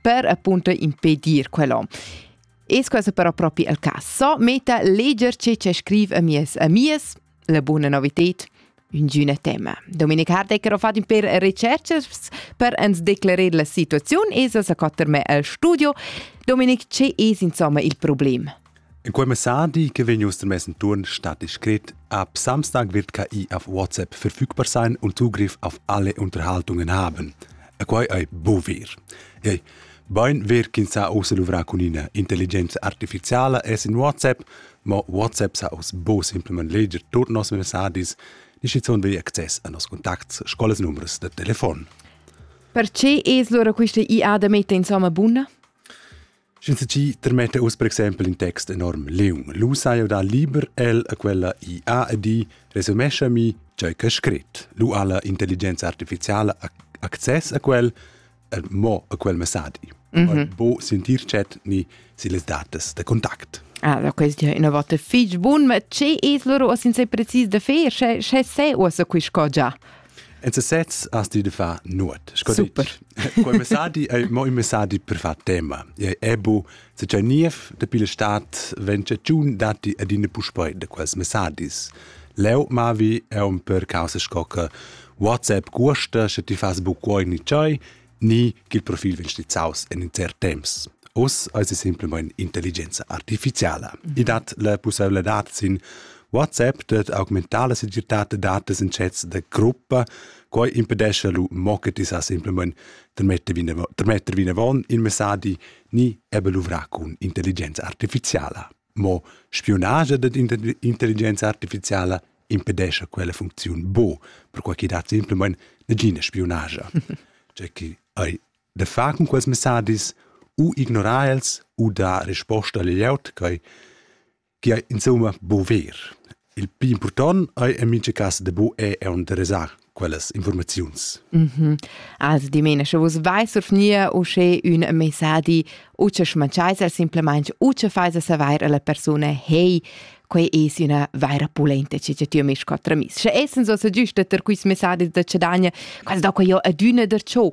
per appunto impedir quello. E questo però proprio il caso. Meta leggerci ci scrive a mies amies la buona novità ingüne tema. Dominik Hardecker ha fatto per recherche per ens declarar la situazione e sa quatter me al studio. Dominik, ce es insomma il problema? En quei messadi che vegn uss mess enturn stat scrit a Samstag wird KI auf WhatsApp verfügbar sein und Zugriff auf alle Unterhaltungen haben. E quei ei buvir. Hey, Bein wird kin sa ausluvra cun ina intelligenza artificiala es in WhatsApp, ma WhatsApp sa aus bo simplement leger tot nos messadis, ni schizunt vi access a nos contacts, scolas numbers de telefon. Perché es lura questa IA da mette insomma bunna? Sch'insatgi termetta uss per exempel in text enorm leung, lu sai jau dar liber el a quella IA ed i resumescha mi tgei ch'è scrit. Lu ha la intelligenza artificiala access a quel e mo a quel messadi. Mm -hmm. Bo sentir chat ni si les datas da contact. Ah, da questi una volta fich bun, ma che es loro sin se precis da fer? Sche se usa quis cosa? En sesez has ti da far nuot. Sco Super. Dit, quel messadi è mo un messadi per far tema. E è bu, se c'è niev de pile stat, wenn c'è giun dati ad in puspoi de quels messadis. Leo mavi è un per causa scocca WhatsApp guasta, sche ti fas bu quoi ni ciai, ni ch'il profil vegn stizzaus en intern temps. Oz eis es simpelmain intelligenza artificiala. Mm -hmm. I dat la pussebladad sin WhatsApp dat augmentar la segirtad da datas in chats da gruppa, quai impedesce lu mo che ti sa simpelmain trmetter vinavon in messaggi ni ebbe luvrar cun intelligenza artificiala. Mo spiunage dad intelligenza artificiala impedescha quella funcziun bo, perquai ch'i dat simplamain nagina spiunage. Cioè chi ei da far cun quels messadis u ignorar els u dar risposta al glieud quai chi ei insomma bo ver. Il pli impurtant ei en mintga cas de bu è interesar quellas informaziuns. Mm -hmm. Also dimena, sche vus vai survgnir usche un messadi, u che schmanceisa simplemente, u che faisa saver alla persona, hey, quei es üna vaira pulenta che ti mi scotra mis. Sche essens so giusta ter quis messadi da cedagna, quasi da quei io adüna der ciò.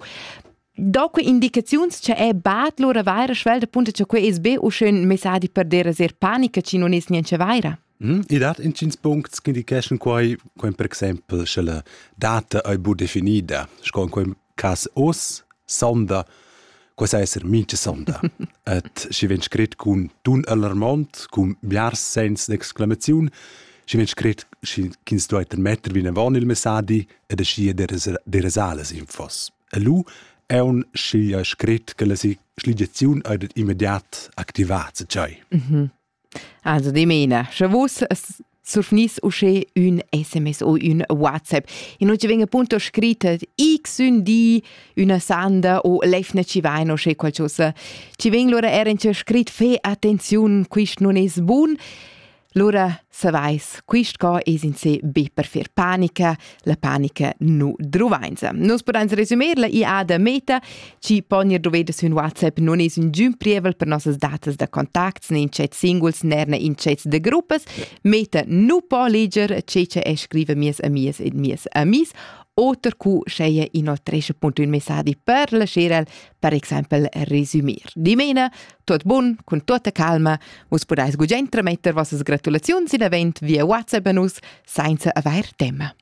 Dopo indicaziuns che è bat lura vaira schwelda punta che quei es be u schön messadi per dera ser panica ci non es niente vaira. Mm, I dat intgins puncts ch'indicheschan quai, come per exempel sche la data ei bu definida, sco in quei cas oz, sonda, quai sa esser mincha sonda. Et schi vegn scrit cun tun alarmant, cun biars sens d'exclamaziun, schi vegn scrit ch'ins duai metter vinavon il messadi ed aschi derasales infos. E lu è un schi scrit che la sligiaziun ha immediat activat se tschai. Mhm. Also dimena, sche vus surfnis usche ün SMS o ün WhatsApp. In oggi veng appunto scrittet x ün di üna sanda o lefne ci vain o sche qualcosa. Ci veng lura er in scrit fe attenziun, quist non es bun. Lura savais, quist ca es in se be per fer panica, la panica nu druvainsa. Nus pudains resumerla i ha da meta, chi pognir doveda sün WhatsApp nun es ün giün prievel per nossas datas da contacts ne intschets singuls ner ne intschets da gruppas. Meta nu po leger che che e scriva mies amias ed mies amis oter cu scheia inoltresce punto un messadi per lascer el per exempel resumir. Dimena, tot bun, cun tota calma, vus podais gugent trametter vossas gratulaziuns in event via WhatsApp a nus, senza avair tema.